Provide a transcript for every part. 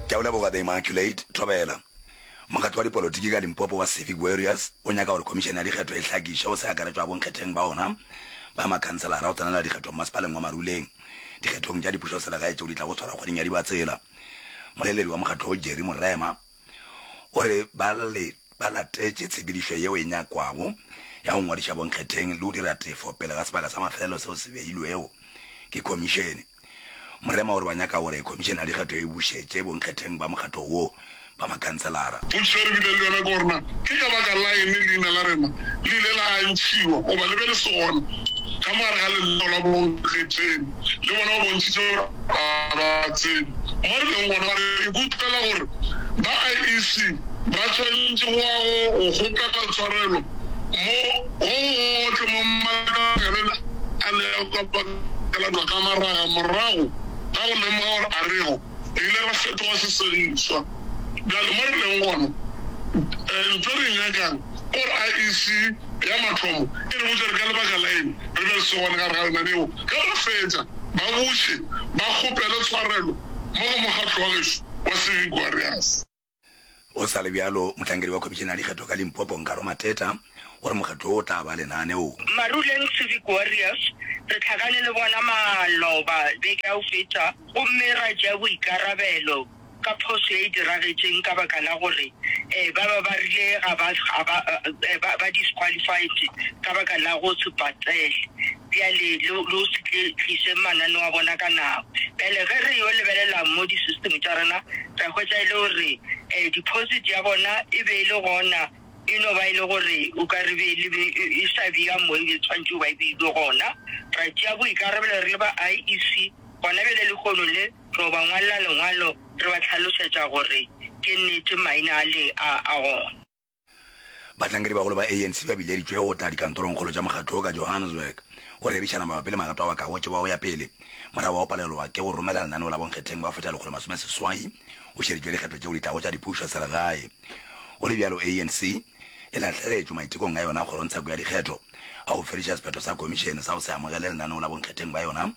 Ke a go leboga, The Immaculate. Thobela. Mokgatlo wa dipolotiki ka Limpopo wa Civic Warriors o nyaka gore Khomišene ya Dikgetho e hlakiše go se akaretšwa ga bonkgetheng ba ona ba makhanselara go tsenela dikgetho mmasepaleng wa Maruleng dikgethong tša dipušoselegae tšeo di tlago swarwa kgweding ya Dibatsela. Moleleri wa mokgatlo wo, Jerry Morema, o re ba ba latetše tshepedišo yeo e nyakwago ya go ngwadiša bonkgetheng le go dira tefo pele ga sebaka sa mafelelo seo se beilwego ke Khomišene. Morema o re ba nyaka gore Khomišene ya Dikgetho e bušetše bonkgetheng ba mokgatlo wo ba makhanselara. Potšišo e re bile le yona ke gore na ke ka baka laeng leina la rena le ile la ntšhiwa goba le be le se gona ka mo gare ga lenaneo la bonkgetheng. Le bona ba bontšhitše gore ga ba tsebe mo re leng gona, ba re ikutlwela gore ba IEC ba swanetše go ya go go kgopela tshwarelo mo go go gotle mo matlakabelo a lego ka baka Ka nako ka maraga, morago ga go lemoga gore a rego, re ile ra fetoga sesegiswa. Bjale mo re lego gona, eupša re nyakang ke gore a isi ya mathomo e re botše re ka lebaka la eng re be lesogana gare ga lenaneo. Ge ba fetša, ba buše ba kgopele tshwarelo mo go mokgatlo wa gešo wa Sebiku, a re'as. Go sa le bjalo, mohlankedi wa Khomišene ya Dikgetho ka Limpopo, Nkaro Mateta, o re mokgetho wo o tla ba lenaneong. Maruleng Civic Warriors re hlakane le bona maloba beke ya go feta gomme ra tšea boikarabelo ka phošo ye e diragetšeng ka baka la gore ba ba ba rile ga ba ga ba ba ba disqualified ka baka la go se patele bjale le go se tlišeng mananeo a bona ka nako. Bjale ge re yo lebelelang mo di system tša rena ra hwetša e le gore um deposit ya bona e be e le gona e no ba e le gore o ka re be e le e sa beya mo e be tshwantše o ba e beilwe gona ra tšea boikarabelo re le ba IEC gona bjale lekgono le re ba ngwalela lengwalo re ba tlhalosetša gore ke nnete maina a le a gona Bahlankedi-bagolo ba ANC ba bileditšwe go tla dikantorongkgolo tša mokgatlo wo ka Johannesburg go rerišana mabapi le magato a wa kago tšewa go ya pele morago ga go palelwa ke go romela lenaneo la bonkgetheng ba feta lekgolo masome seswai go šeretšwa dikgetho tšeo di tlago tša dipušo selegae. Go le bjalo ANC e lahlegetšwe maitekong a yona a kgorongtsheko ya dikgetho a go fediša sephetho sa khomišene sa go se amogele lenaneo la bonkgetheng ba yona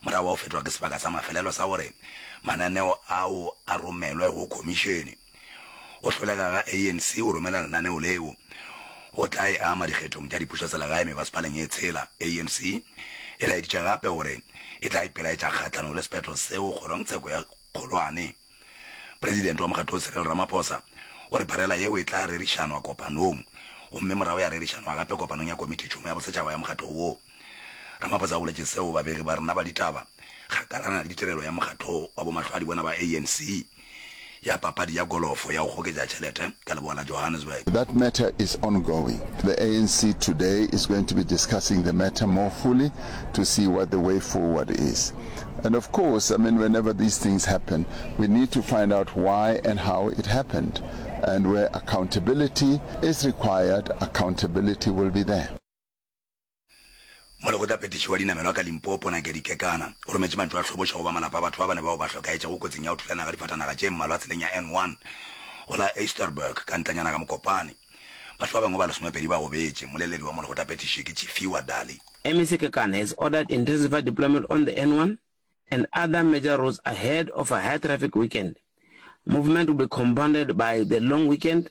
morago ga go fetwa ke sebaka sa mafelelo sa gore mananeo ao a romelwe go khomišene. Go hlolega ga ANC go romela lenaneo leo go tla e ama dikgethong tša dipušoselegae mebasepaleng e tshela. ANC e laeditše gape gore e tla ipelaetša kgahlanong le sephetho seo kgorongtsheko ya kgolwane. Presidente wa mokgatlo wo Cyril Ramaphosa o re pharela yeo e tla rerišanwa kopanong gomme morago ya rerišanwa gape kopanong ya Komititšhomo ya Bosetšhaba ya mokgatlo wo. Ramaphosa o boletše seo babegi ba rena ba ditaba kgakalana le ditirelo ya mokgatho wa bomahlwadi bona ba ANC ya papadi ya golofo ya go goketša tšhelete ka leboa la Johannesburg. That matter is ongoing. The ANC today is going to be discussing the matter more fully to see what the way forward is. And of course, I mean, whenever these things happen, we need to find out why and how it happened. And where accountability is required, accountability will be there. Molekgotlaphethiši wa dinamelwa ka Limpopo, Nakedi Kekana, o rometše mantšu a hlobošo go ba malapa a batho ba bane bao ba hlokaetšego kotsing ya go thulana ga difatanaga tše mmalwa tseleng ya N1 go la Eystersburg ka ntlanyana ka Mokopane. Batho ba bangwe ba lesomepedi ba gobetše. Moleledi wa molekgotlaphethiši ke Tshifiwa Dali. MEC Kekana has ordered intensified deployment on the N1 and other major roads ahead of a high traffic weekend. Movement will be compounded by the long weekend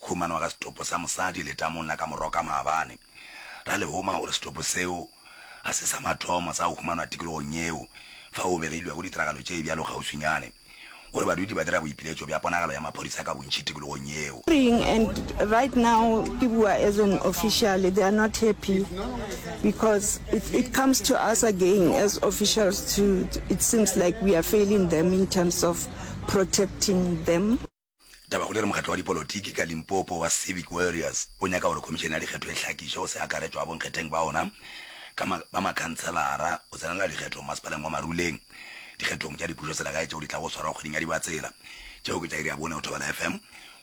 Humanwa ga setopo sa mosadi letamong la ka morwa ka maabane. Ralehuma o re setopo seo ga se sa mathomo sa go humanwa tikologong yeo fao go begilwego ditiragalo tše bjalo kgauswinyane. O re badudi ba dira boipiletšo bja ponagalo ya maphodisa ka bontši tikologong yeo. Ring and right now ke bua as an official they are not happy because it it comes to us again as officials to it seems like we are failing them in terms of protecting them. Tabakgolo e re mokgatlo wa dipolotiki ka Limpopo wa Civic Warriors o nyaka gore Khomišene ya Dikgetho e hlakiše go se akaretšwa bonkgetheng ba ona ka ba makhanselara go tsenela dikgetho mmasepaleng wa Maruleng dikgethong tša dipušoselegae tšeo di tlago go swarwa kgweding ya Dibatsela. Tšeo ke tša iri ya bone go Thobela FM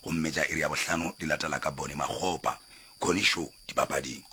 gomme tša iri ya bohlano di latela ka Bonnie Makgopa, Connie Show, dipapading.